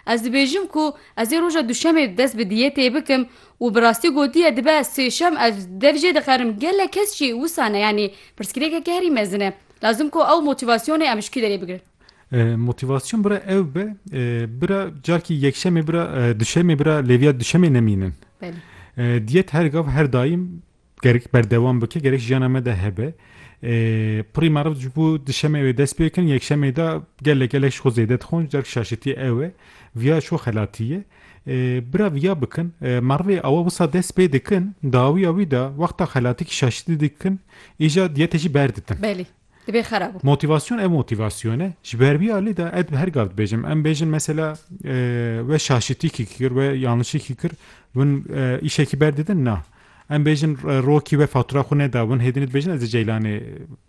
Ez dibêjim ku ez ê roja duşemê dest bi diyetê bikim û bi rastî gotiye dibe sêşem ez dev jê dixerim gelek kes jî wisa ne yanî pirsgirêkeke herî mezin e. Lazim ku ew motîvasyonê em ji kî derê bigirin? Motîvasyon bira ew be bira carkî yekşemê bira duşemê bira lêviya duşemê nemînin. Diyet her gav her daîm Gerek berdewam bike, gerek jiyana me de hebe. Pirî meriv ji bo di şemê wê dest pê kirin, yekşemê de gelek gelek ji xwe zêde dixwin, ji derg şaşitî ew e. Viya şo xelatî ye. Bira viya bikin, merivê awe wisa dest pê dikin, dawiya wî de wexta xelatî ki şaşitî dikin, îja diyetê jî berditin. Belê. Dibê xera bû. Motivasyon ev motivasyon e. Ji ber vî alî de ez bi her gav dibêjim. Em bêjin mesela we şaşitîkî kir, we yanlişîkî kir, win îşekî berdidin na. Em bêjin rokî we fatura xwe neda, win hêdinê dibêjin ez ê Ceylanê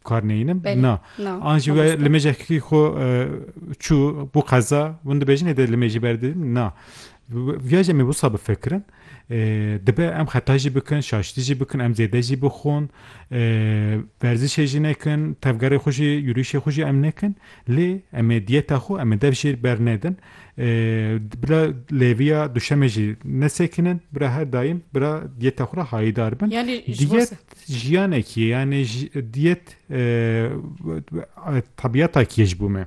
kar neyînim. Na. An jî we li mêjekî xwe çû bû qeza, win dibêjin hêdê li mêjî berdidin na. Viya jî em ê wisa bifikirin. Dibe em xeta jî bikin, şaştî jî bikin, em zêde jî bixwin, werzişê jî nekin, tevgerê xwe jî, yûrîşê xwe jî em nekin. Lê em ê diyeta xwe em ê dev jî bernedin. Bila lêviya duşemê jî nesekinin, bila her daîm bila diyeta xwe re hayîdar bin. Yanî ji bo se? Diyet jiyanekî ye, yanî diyet tebîyata kî ye ji bo me.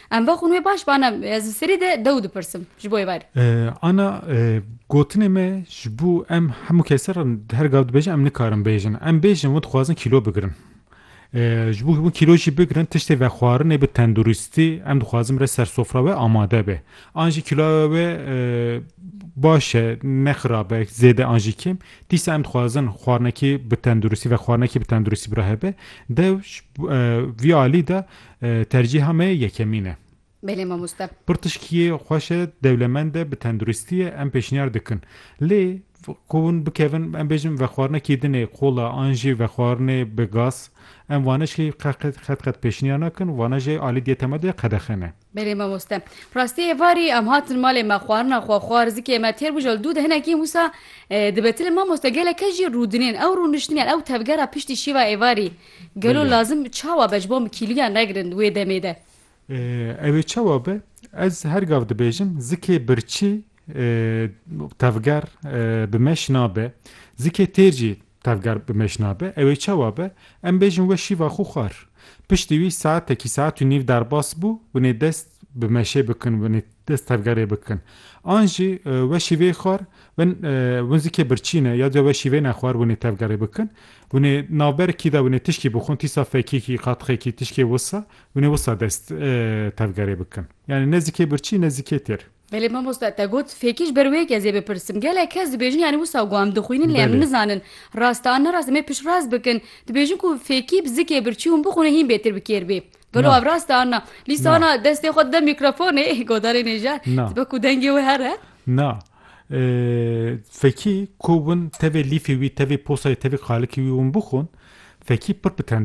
Em va xûn wê baş ba ne ez bi serî de dew dipirsim ji bo êvarê. Ana gotinê me ji bo em hemû kesê re di her gav dibêjin em nikarin bêjin. Em bêjin wan dixwazin kîlo bigirin. Ji bo hûn kîlo jî bigirin tiştê vexwarinê bi tenduristî em dixwazin re ser sofra we amade be. An jî kîloya we baş e ne xirab e zêde an jî kêm. Dîsa em dixwazin xwarinekî bi tenduristî vexwarinekî bi tenduristî bira hebe. Dew vî alî de Tercîha me yekemîn e. Belê mamoste. Pirtişkiyê xweş e, dewlemend e, bi tenduristî ye, em pêşniyar dikin. Lê ku hûn bikevin em bêjin vexwarina kîdinê kola an jî vexwarinê bi gaz em wane jî qet qet pêşniyar nakin, wane jî alî diyete me de qedexe ne. Belê mamoste. Rastî êvarî em hatin malê me xwarina xwe xwar zikê me têr bû ji li dû de hinekî wisa dibe. Ti li mamoste gelek kes jî rûdinên ew rûniştiniyan ew tevgera piştî şîva êvarî Gelo lazim çawa be ji bo em kîliya negirin wê demê de? Ew ê çawa be, ez her gav dibêjim zikê birçî tevger bi meş nabe, zikê têr jî tevger bi meş nabe. Ew ê çawa be, em bêjin we şîva xwe xwar. Piştî wî saetekî saet û nîv derbas bû, hûn ê dest bi meşê bikin binê dest tevgerê bikin an jî weşî vê xwar bin win zikê birçî ne ya diya weşî vê ne xwar winê tevgerê bikin winê navber kî de winê tişkî bixwin tîsa fekî kî qatixê kî tişkê wisa winê wisa dest tevgerê bikin yanî ne zikê birçî ne zikê têr. Belê mamosta te got fekî ji ber wê yek ez ê bipirsim gelek kes dibêjin yanî wisa ku em dixwînin lê em nizanin rast e an ne rast em ê piştrast bikin dibêjin ku fekî bi zikê birçî hûn bixwinê hîn bêtir bi kêr bê Gelo ev rast e anna. Lîsa ana destê xwe dide mîkrofonê godarê nêjar. Dibe ku dengê wê here. Na. Fekî ku win tevê lîfê wî tevê posayê tevê qalikê wî win bixwin fekî pir bi